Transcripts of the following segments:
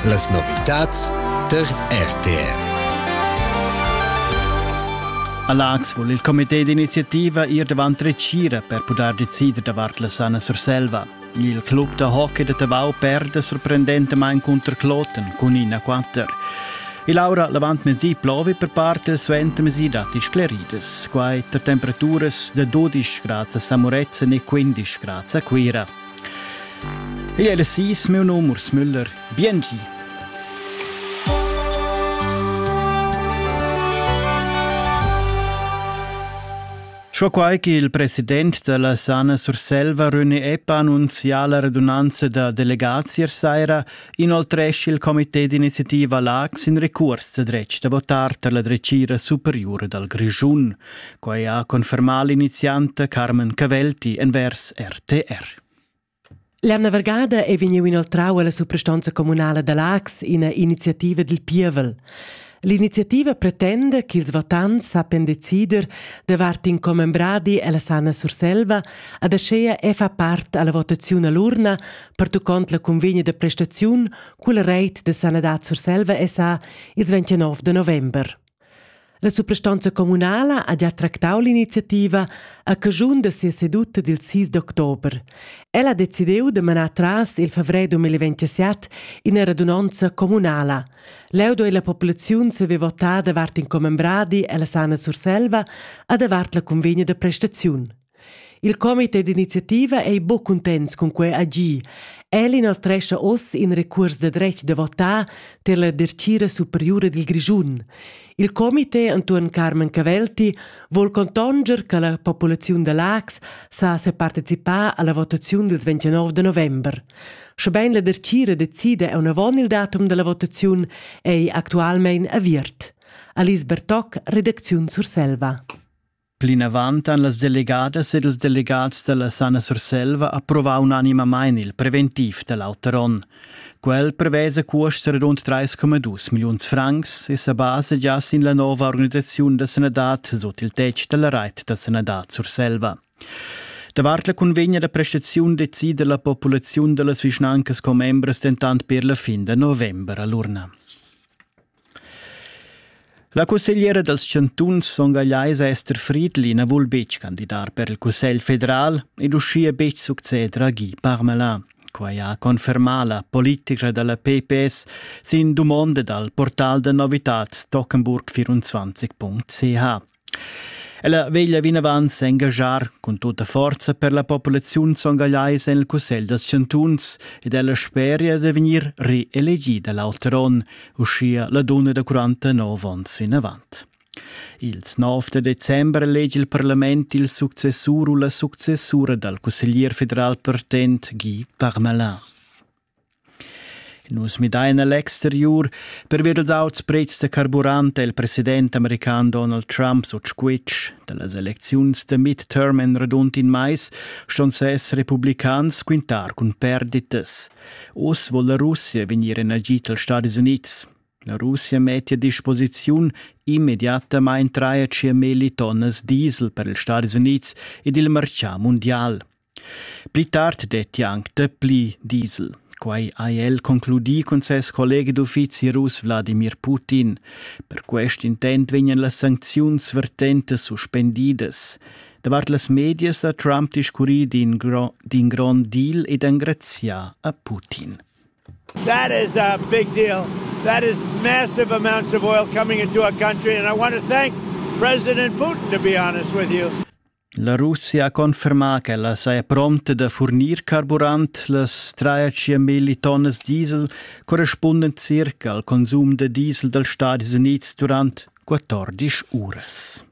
Las novitads tar RTR. All'Ax vul il comité d'iniziativa ir davant retgira per pudair decider davart la sana Surselva. Il club da hockey da Tavau perde sorprendentamain cunter Kloten cun ina quatter. E Laura l'avantmesi plovi per parte suentermesi datti scleridas. Quai per temperaturas da 12 grads a Samorezzen e 15 grads a Cuira. Ei ei las sis, miu num Urs Müller. Biengi. Scho quai che il president della Sana Surselva, René Epp, annunzia la redunanza da delegazier saira, inoltresce il comité d'iniziativa LAX in recurs de dretg da votar per la drecira superiore dal Grischun. Quei ha confermà l'inizianta Carmen Cavelti envers RTR. L'anna vargada è vegniu inoltrau alla suprastanza communala da Lax ina iniziativa dil pievel. L'iniziativa pretenda ch'ils votants sappian decider davart in commembradi alla Sanna Surselva ad aschea e fa part alla votaziun all'urna pertuccont la convegna de prestaziun culla reit de Sanadad Surselva SA ils 29 de november. La suprastanza communala ha gia tractau l'iniziativa a caschun da sia seduta dil 6 d'october. Ella ha decidiu da manar tras il fevrer 2027 ina radunonza communala. Leu doi la populaziun saver votar davart in commembradi ella Sana Surselva a davart la convegna da prestaziun. Il comité d'iniziativa ei buc cuntents cun quei agir. El inoltrescha oz in recuors da dretg da votar tier la dertgira superiura dil Grischun. Il comité entuorn Carmen Cavelti vul contonger che la populaziun da Lax sa separticipar alla votaziun dils 29 de november. Schebein la dertgira decida aunavon il datum dalla votaziun ei actualmein aviert. Alice Bertoc, redacziun Surselva. Plinavant han las delegadas ed ils delegats dalla Sana Surselva approvau unanimamain il preventiv da l'auter onn. Quel prevesa cuosts radund 3,2 milliuns francs e sa basa gia sin la nova organisaziun da sanadad sut il tetg dalla reit da sanadad Surselva. Davart la cunvegna da prestaziun decida la populaziun dallas vischnancas commembras dentant per la fin da november all'urna. La cussegliera dals chantuns Son Gagleis Esther Friedli na vul betg candidar per il Cussegl federal ed uschia betg succeder a Guy Parmelin. Quai ha confermà la politica da la PPS sin dumonda dal portal da novitads Tockenburg24.ch. Ella veglia vinavant s'engaschar cun tutta forza per la populaziun songagliaisa en il Cussegl dals chantuns ed ella speria da vegnir reelegida l'auter onn, uschia la dunna da 49 onns vinavant. Ils 9 da december elegi il parlament il successur u la successura dal cusseglier federal pertent Guy Parmalin. Nus midain a l'exteriur pervia dals auts prezs da carburant è il president american Donald Trump sut squitsch. Da las elecziuns da midterm en radund in mais ston ses republicans quintar cun perditas. Oz vul la Russia vegnir en agit als Stadis Unids. La Russia mettia a disposiziun immediatamain 3,5 tonnas diesel per ils Stadis Unids ed il martgà mundial. Pli tard detti anc dapli diesel. Quai ha el concludì cun ses collega d'uffizi russ Wladimir Putin. Per quest intent vegnan las sancziuns vertentas suspendidas. Davart las medias ha Trump discurrì d'in, gro d'in grond deal ed engrazià a Putin. That is a big deal. That is massive amounts of oil coming into our country and I want to thank President Putin to be honest with you. La Russia ha confermà ch'ella saja prompta da furnir carburant las trais milli tonnas diesel correspundent circa al consum da diesel dals Stadis Unids durant 14 uras.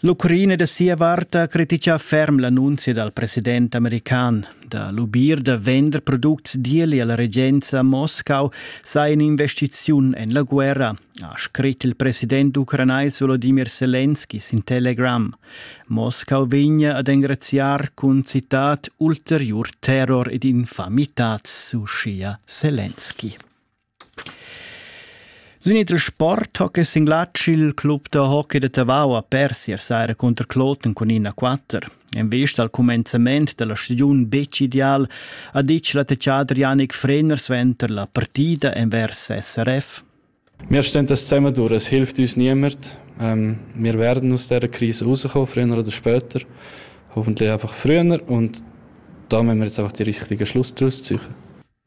L'Ucraina da sia vart ha criticà ferm l'annunzia dal president american. Da lubir da vender products d'ieli alla regenza a Moscau sei in'investiziun en la guerra, ha scrit il president ucranais Volodimir Selenski sin Telegram. Moscau vegna ad engraziar cun citat ulteriur terror ed infamitads, uschia Selenski. Sin il sport hockey singlatsch il club da hockey de Tavau ha pers ier saira contro Kloten cun 1-4. En vista al cumenzament della stagiun betg ideal ha ditg l'attacciader Yannick Frener suenter la partida envers SRF. Mia stentas zemaduras hilft uns niemert. Ähm, wir werden aus dieser Krise rauskommen, früher oder später. Hoffentlich einfach früher und da müssen wir jetzt einfach die richtigen Schluss daraus ziehen.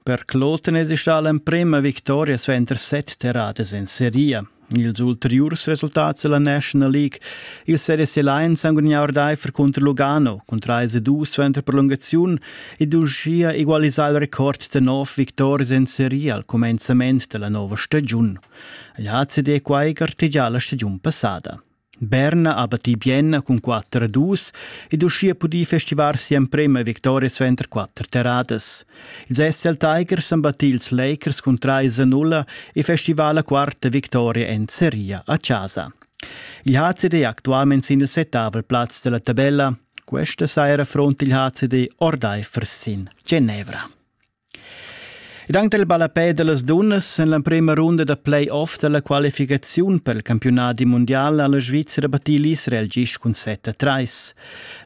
Per Kloten ist allem prima vittoria suenter set terradas in Serie. Ils ulteriurs resultats della National League. Il Series Alliance ha gudagnà ordaifer contro Lugano, con 3-2 suenter prolungaziun, ed uschia egualisà il record da nov victorias en seria al cumenzament da la nova stagiun. L'ACD quai gartegià la stagiun passada. Berna ha battì Bienna cun 4-2 ed uschia pudì festivar si'emprima victoria suenter quatter terradas. Ils SL Tigers han battì ils Lakers cun 3-0 e festival la quarta victoria en seria a casa. Il HCD è actualmente sin il settavel plaz della tabella Questa saira front il HCD ordaifer sin Genevra. Ed anche il ballapè delle dunnas en la prima runda da play-off della qualificazione per il campionato mondiale alla Svizzera batì l'Israel gis cun 7-3.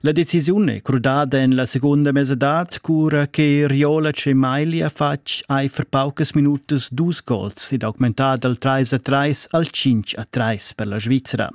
La decisione è crudada en la seconda mesadad cura che Riolac e Maili ha fatg aifer paucas minutas dus gols ed augmentat dal 3-3 al 5-3 per la Svizzera.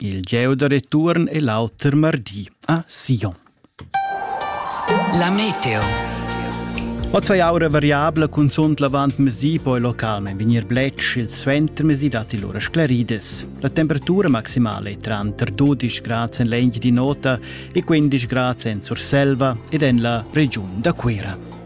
Il gieu da retuorn è l'auter mardi a Sion. La meteo. Oz hai aura variabla cunzunt l'avantmesi, poi localment vegnir bletsch, il suentermesi datti lura sclarides. La temperatura maximale è tranter 12 grad en l'egl di nota e 15 grad en Surselva ed en la regiun da Cuira.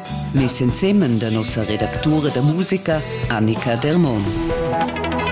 Mes ensemen da nossa redactura da musica Annika Dermon.